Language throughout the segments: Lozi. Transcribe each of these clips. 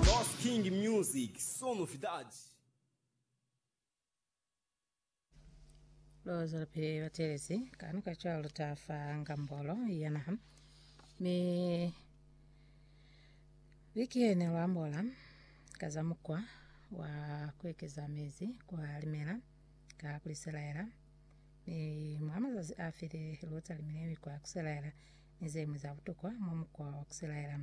Lost King Music, Só Novidade. Loza pe batelezi kanu ka cwalo ta fa ngambolo ya naha mi likene lwa mbola ka za mukwa wa kuekeza mezi kwa limela ka kuliselaela mi mwa mazazi a file lota limile mi kwa kuselaela ni zeñwi za butokwa mwa mukwa wa kuselaela.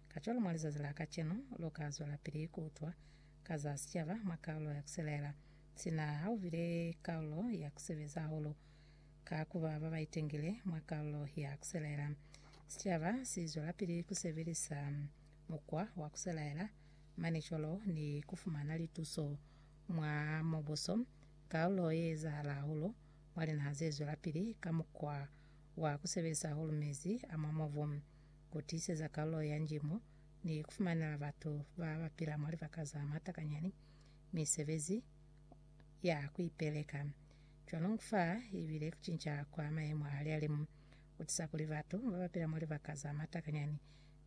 Kacwalo mwa lizazi la kacenu, lu ka zwelapili ku utwa ka za sicaba mwa kalulo ya kuselaela, sina ha u bile kalulo ya ku sebeza hahulu ka ku ba ba ba itengile mwa kalulo ya kuselaela. Sicaba si zwelapili ku sebelisa mukwa wa kuselaela mane cwalo ni ku fumana lituso mwa mubuso, kalulo ye ezahala hahulu mwa linaha ze zwelapili ka mukwa wa ku sebelisa hahulu mezi a mwa mubu, ku tiiseza kalulo ya njimo, ni ku fumanela batu ba ba pila mwa libaka za matakanyani misebezi ya ku ipeleka. Cwaloñu fa i bile ku cinca kwa mayemo a lialimu ku tisa kuli batu ba ba pila mwa libaka za matakanyani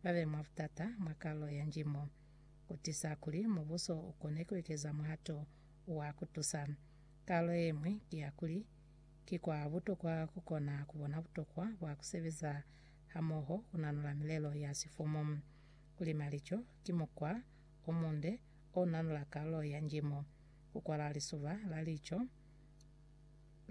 ba be mwa butata mwa kalulo ya njimo. Ku tisa kuli Mubuso u kone ku ekeza muhato wa ku tusa. Kalulo ye ñwi ki ya kuli, Ki kwa butokwa ku kona ku bona butokwa bwa ku sebeza hamoho ku nanula milelo ya sifumu. Ku lima lico ki mukwa o munde o nanula kalulo ya njimo. Ku kwala lisuba la lico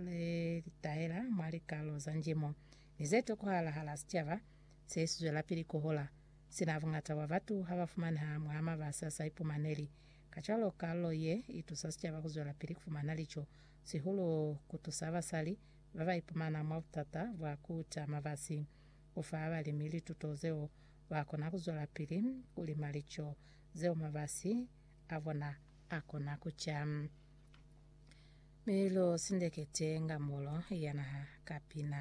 le li tahela mwa likalulo za njimo ni ze tokohala hala sicaba se si zwelapili ku hola, sina buñata bwa batu ha ba fumaneha mwa mabasi a sa ipumaneli. Kacwalo, kalulo ye i tusa sicaba ku zwelapili ku fumana lico sihulu ku tusa basali ba ba ipumana mwa butata bwa ku ca mabasi. Ku fa balimi lituto zeo ba kona ku zwelapili ku lima lico zeo mabasi a bona a kona ku ca. Mi lu sindekete nga mulo ya naha ka pina.